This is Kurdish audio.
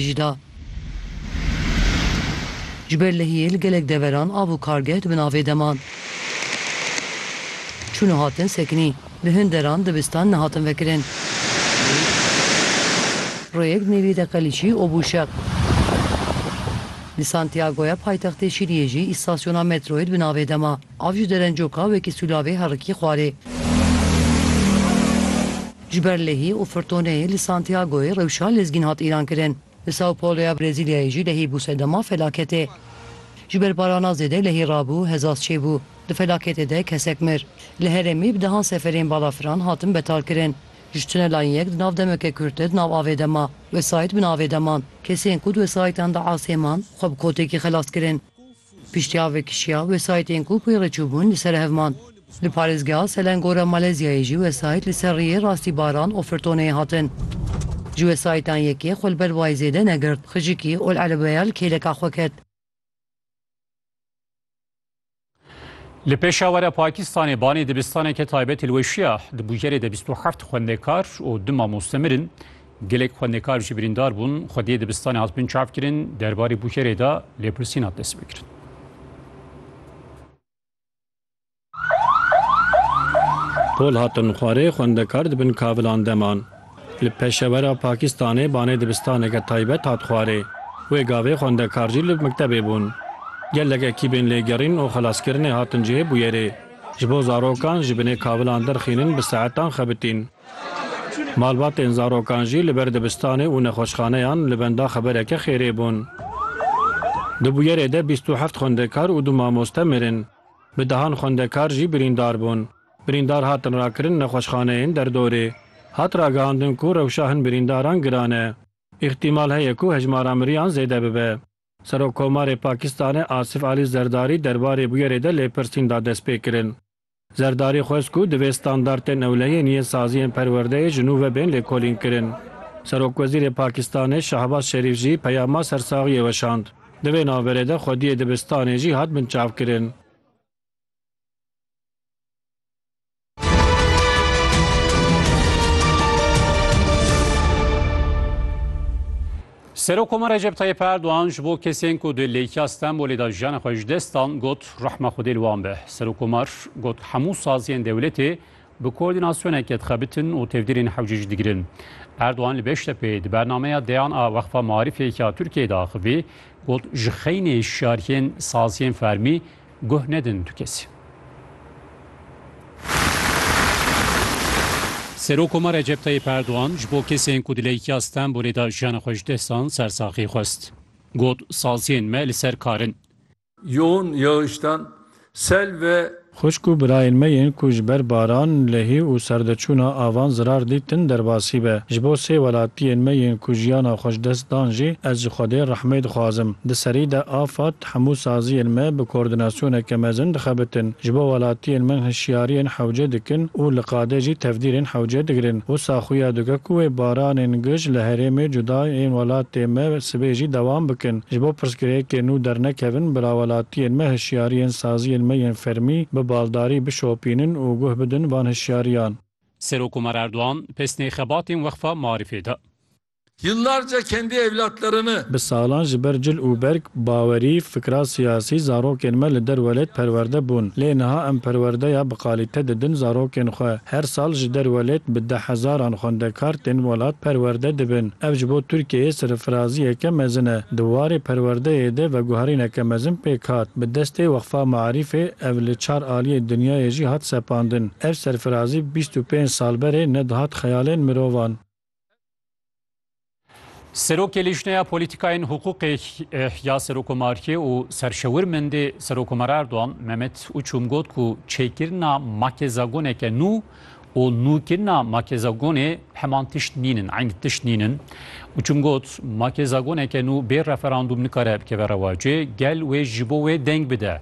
jî da. Ji ber lehiyê li gelek deveran av û kargeh di bin avê de man. Çûn û hatin sekinî. Di hin deran dibistan nehatin vekirin. Rêyek di nêviyê de qelîçî û bû şeq. Li Santiagoya paytextê Şîliyê jî îstasyona metroyê di bin avê de ma. Av ji derencoka wekî sûlavê herikî xwarê. Ji ber lehî û firtoneyê li Santiagoyê rewşa lezgîn hat îlankirin. Li Sao Paulo ya Brezîlyayê jî lehî bû sedema felaketê. Ji ber barana zêde lehî rabû, hezaz çêbû. Di felaketê de kesek mir. Li herêmî bi dehan seferên balafiran hatin betalkirin. Ji tunelan yek di nav demeke kurt de di nav avê de ma. Wesayît bi navê de man. Kesên ku di wesayîtan de asê man, xwe bi kotekî xelas kirin. Piştî avê kişiya, wesayîtên ku pê re çûbûn li ser hev man. Li parêzgeha Selangora Malezyayê jî wesayît li ser riyê Rastîbaran Offertonê hatin. Ji wesayîtan yekê xwe li ber wayê zêde negirt, xijikî ol erebeya li kêleka xwe ket. Li Pêşawere Pakistanê banê dibistaneke taybetî li we şiya. Di bûyerê de bîst û heft xwendekar û du mamoste mirin. Gelek xwendekar jî birîndar bûn, xwe dê dibistanê hatibûn çavkirin, derbarê bûkerê de lêpirsîn hat destpêkirin. Pol hatin xwarê, xwendekar di bin kavilan de man. Li Peşewera Pakistanê banê dibistaneke taybet hat xwarê. Wê gavê xwendekar jî li miktebê bûn. Gelek ekîbên lêgerîn û xelaskirinê hatin cihê bûyerê. Ji bo zarokan ji binê kavilan derxînin bi saetan xebitîn. Malbatên zarokan jî li ber dibistanê û nexweşxaneyan li benda xebereke xêrê bûn. Di bûyerê de bîst û heft xwendekar û du mamoste mirin. Bi dehan xwendekar jî birîndar bûn. Birîndar hatin rakirin nexweşxaneyên derdorê. Hat ragihandin ku rewşa hin birîndaran giran e. Îhtîmal heye ku hejmara miriyan zêde bibe. Serokkomarê Pakistanê Asif Alî Zerdarî derbarê bûyerê de lêpirsîn da destpêkirin. Zerdarî xwest ku divê standartên ewlehiyên yên saziyên perwerdeyê ji nû ve bên lêkolînkirin. Serokwezîrê Pakistanê Şehbaz Şerîf jî peyama sersaxiyê weşand. Di vê navberê de xwediyê dibistanê jî hat binçavkirin. Serokoma Recep Tayyip Erdogan ji bo kesên ku di lêkiya Stenbolê de jiyana xwe ji dest dan got rehma Xwedê li wan be. Serokomar got hemû saziyên dewletê bi koordînasyoneke dixebitin û tevdîrên hewce jî digirin. Erdogan li Beştepeyê di bernameya deyan a Wexfa Marîfê ya Tirkiyeyê de axivî got ji xeynê şariyên saziyên fermî Guh nedin tu kesî. Serokoma Recep Tayyîp Erdogan ji bo kesên ku di leyîkiya Stenbolê de jiyana xwe ji dest dan sersaxî xwest. Got, Saziyên me li ser kar in. Yoğun yağıştan, sel ve. Xwişk û birayên me yên ku ji ber baran, lehî û serdeçûna avan zirar dîtin derbasî be. Ji bo sê welatiyên me yên ku jiyana xwe ji dest dan jî ez ji Xwedê rehmê dixwazim. Di serî de Afad, Hemû saziyên me bi koordinasyoneke mezin dixebitin, ji bo welatiyên me hişyariyên hewce dikin û li qadê jî tevdîrên hewce digirin. Wisa xuya dike ku wê baranên gij li herêmê cuda ên welatê me sibê jî dewam bikin. Ji bo pirsgirêkên nû dernekevin, bila welatiyên me hişyariyên saziyên me yên fermî bi baldarî bişopînin û guh bidin van hişyariyan. Serok Omar Erdogan pesnê xebatên Weqfa Marîfê da. Yıllarca kendi evlatlarını. Bi salan ji ber cil û berg, bawerî, fikra siyasî zarokên me li der welêt perwerde bûn. Lê niha em perwerdeya bi qalîte didin zarokên xwe. Her sal ji der welêt bi deh hezaran xwendekar tên welat perwerde dibin. Ev ji bo Tirkiyeyê serifraziyeke mezin e. Di warê perwerdeyê de veguherîneke mezin pêk hat. Bi destê Weqfa Maarîfê ev li çar aliyê dinyayê jî hat sepandin. Ev serfirazî bîst û pênc sal berê nedihat xeyalên mirovan. Serokê Lîjneya Polîtîkayên Hiqûqê ya Serokomariyê û serşewirmendê Serokomar Erdogan Mehmet Uçum got ku çêkirina makezagoneke nû û nûkirina makezagonê heman tişt nînin, eyn tişt nînin. Uçum got makezagoneke nû bê referandûm nikare bikeve rewacê, gel wê ji bo wê deng bide.